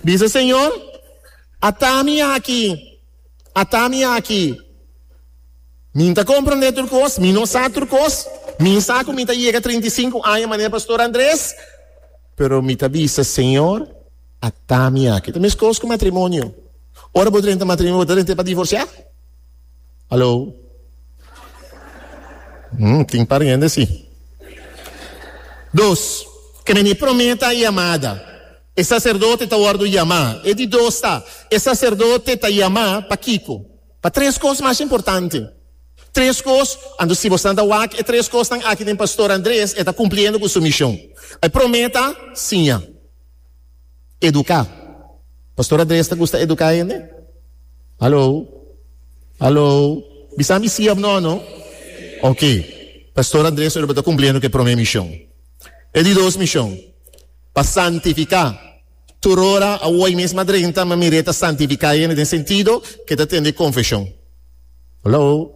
Bisa Señor, ata mi aki, ata mi aki. Mi ta comprende tur cos, mi no sa tur cos, mi sa cu mi ta yega trinta i sinku aña manera Pastor Andres, pero mi ta bisa Señor, ata mi aki. Ta mescos cu matrimonio. Ora bo drenta matrimonio, bo ta drenta pa divorcia? Hallo? Hmm, tin pariente si. Dos, Kende mi prome ta yamada. E saserdote ta wòrdu yamá. E di dos ta, E saserdote ta yamá pa kiko? Pa tres kos mas importante. Tres kos, anto si bo san ta wak e tres kosnan aki den Pastor Andres, e ta kumpliendo ku su mishon. E promé ta, siña. Eduká. Pastor Andres ta gusta eduká hende? Haló? Haló? Bisa mi sí òf nò, no? Oke. Pastor Andres ora bo ta kumpliendo ku e promé mishon. E di dos mishon. pa santifiká. Tur ora, awor mes a drenta, ma mir'é ta santifiká hende den sentido k'e ta tende konfeshon. Haló!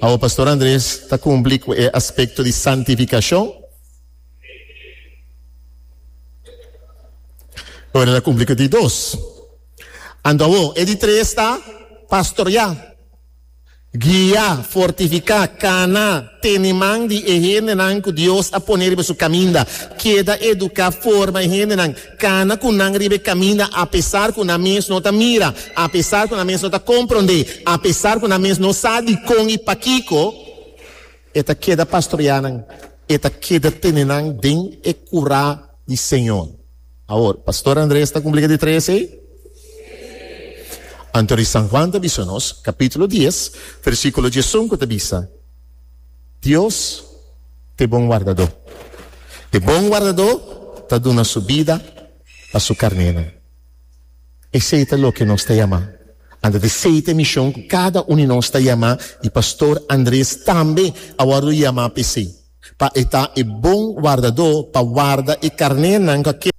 Awor Pastor Andres ta kumpli ku e aspekto di santifikashon? Ora el a kumpli ku di dos. Anto awor e di tres ta pastoriá. Guia, fortifiká, kana, tene man di e hendenan ku Dios a pone riba su kaminda. Keda eduká, forma e hendenan, kana ku nan riba e kaminda apesar ku nan mes no ta mira, apesar ku nan mes no ta komprondé, apesar ku nan mes no sa dikon i pakiko. E ta keda pastorea nan, e ta keda tene nan den e kurá di Señor. Awor, Pastor Andres ta kumplí ka di tres ei? Anto di San Juan ta bisa nos, kapítulo dies, versíkulo diesunku ta bisa, Dios t'e bon wardadó. E bon wardadó ta duna su bida pa su karnénan. Esei ta loke nos ta yamá. Anda di seite mishon ku kada un di nos ta yamá i Pastor Andres tambe a wòrdu yamá pa esei, pa e ta e bon wardadó pa warda e karnénan ku a keda.